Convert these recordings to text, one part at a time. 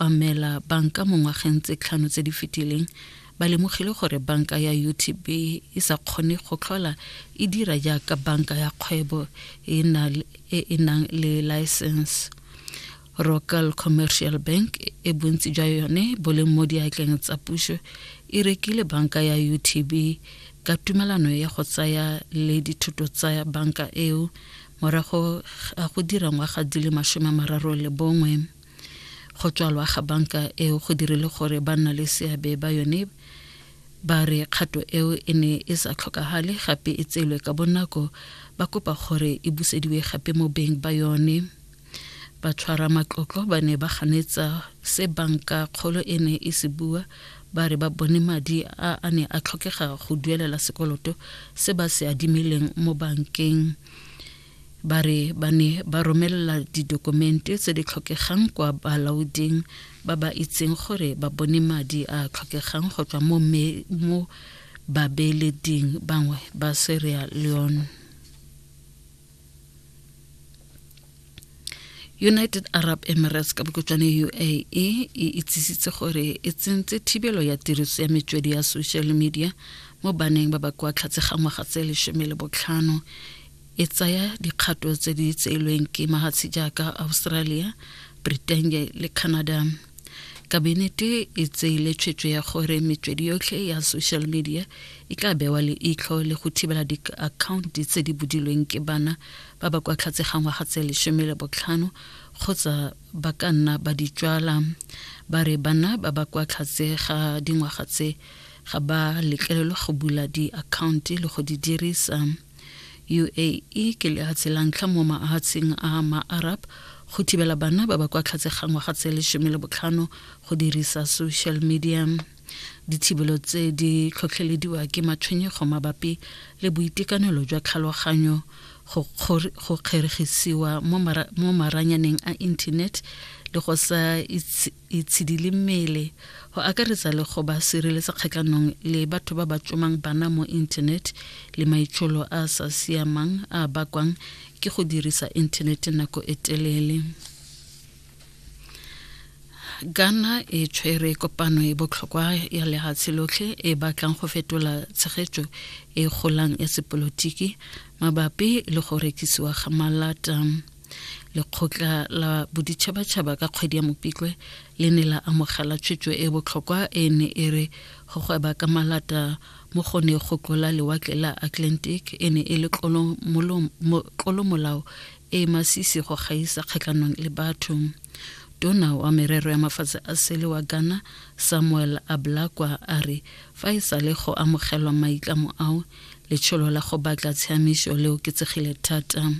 obamela banka mo ngwageng tse tlhano tse di fetileng ba lemogile gore banka ya utb e sa kgone go tlhola e dira jaaka banka ya kgwebo e, e, e nang le license rocal commercial bank e bontsi jwa yone bo leng mo diatleng tsa puso e rekile banka ya utb ka tumelano ya go tsaya le dithuto tsa banka eo morago a go dira ngwaga di le masome mararo le bongwe go tswalwa ga banka eo go dirile gore ba nna le seabe ba yone ba re kgato eo e ne e sa tlhokagale gape e tseelwe ka bonako ba kopa gore e busediwe gape mo beng ba yone ba tshwara matlotlo ba ne ba ganetsa se banka kgolo e ne e se bua ba re ba bone madi a a ne a tlhokega go duelela sekoloto se ba se adimileng mo bankeng ba re ba ne ba romelela didokumente tse di tlhokegang kwa balaoding ba ba itseng gore ba bone madi a tlhokegang go tswa mo babeeleding bangwe ba Sierra Leone united arab emirates ka bokotswane uae e itsisitse gore e tsentse thibelo ya tiriso ya metswedi ya social media mo baneng ba ba kwa tlhatse ga ngwaga tse lesome le botlhano e tsaya dikgato tse di tseelweng ke mahatshe jaaka australia britain le canada kabinete e tseile tshwetso ya gore metswedi yotlhe ya social media e tla bewa le itlho le go thibela diakhaonti tse di bodilweng ke bana ba ba kwa tlhatse ga ngwaga tse lesome le botlhano kgotsa ba ka nna ba di tswala ba re bana ba ba kwa tlhatse ga dingwaga tse ga ba letlelelwa go bula diakhaonti le go di dirisa UAE ke lehatshe la ntlha mo mahatsheng a ma-Arab go thibela bana ba ba kwa tlhatse ga ngwaga tse lesome le botlhano go dirisa social media dithibelo tse di tlhotlhelediwa ke matshwenyego mabapi le boitekanelo jwa tlhaloganyo go kgeregisiwa mo maranyaneng a internet le go sa e tshidile mmele go akaretsa le go ba sireletsa kgatlhanong le batho ba ba tsomang bana mo internet le maitsholo a sa siamang a bakwang ke go dirisa internet nako e telele ghana e tshwere kopano e botlhokwa ya lehatshe lotlhe e batlang go fetola tshegetso e golang ya sepolotiki mabapi le go rekisiwa ga malata lekgotla la boditšhabatšhaba ka kgwedi ya mopitlwe le ne la amogela tshwetso e botlhokwa e ne e re go gweba ka malata mo go ne go tlola lewatle la atlantic e ne e le tlolomolao e masisi go gaisa kgatlhanong le batho tona wa merero ya mafatshe a sele wa ghana samuel ablakwa a re fa e sa le go amogelwa maitlamo ao letsholo la go batla tshiamiso le oketsegile thata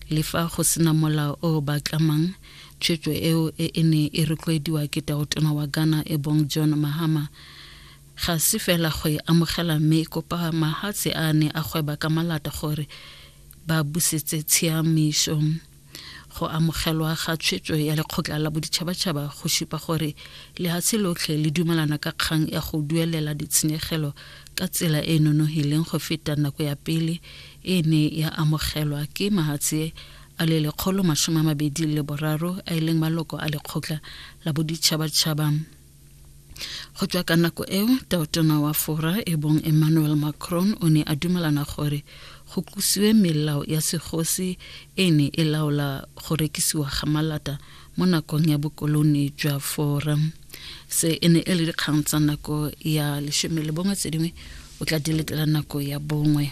le fa go sena molao o ba tlamang tshwetso eo e e ne e rotloediwa ke taotona wa ghana e bong john mahama ga se fela go e amogela mme e kopa mahatshe a ne a gweba ka malata gore ba busetse tshiamiso Go amogelwa ga tshwetso ya lekgotla la boditšhabatšhaba go supa gore lehatshe lotlhe le dumelana ka kgang ya go duelela ditshenyegelo ka tsela e e nonogileng go feta nako ya pele e ne ya amogelwa ke mahatshe a le lekgolo masome a mabedi le boraro a e leng maloko a lekgotla la boditšhabatšhaba go tswa ka nako eo taotona wa fora e bong emmanuel macron o ne a dumelana gore go kusiwe melao ya segosi e ne e laola go rekisiwa ga malata mo nakong ya bokolone jwa fora se e ne e le dikgang tsa nako ya lesome le bongwe tse dingwe o tla di letela nako ya bongwe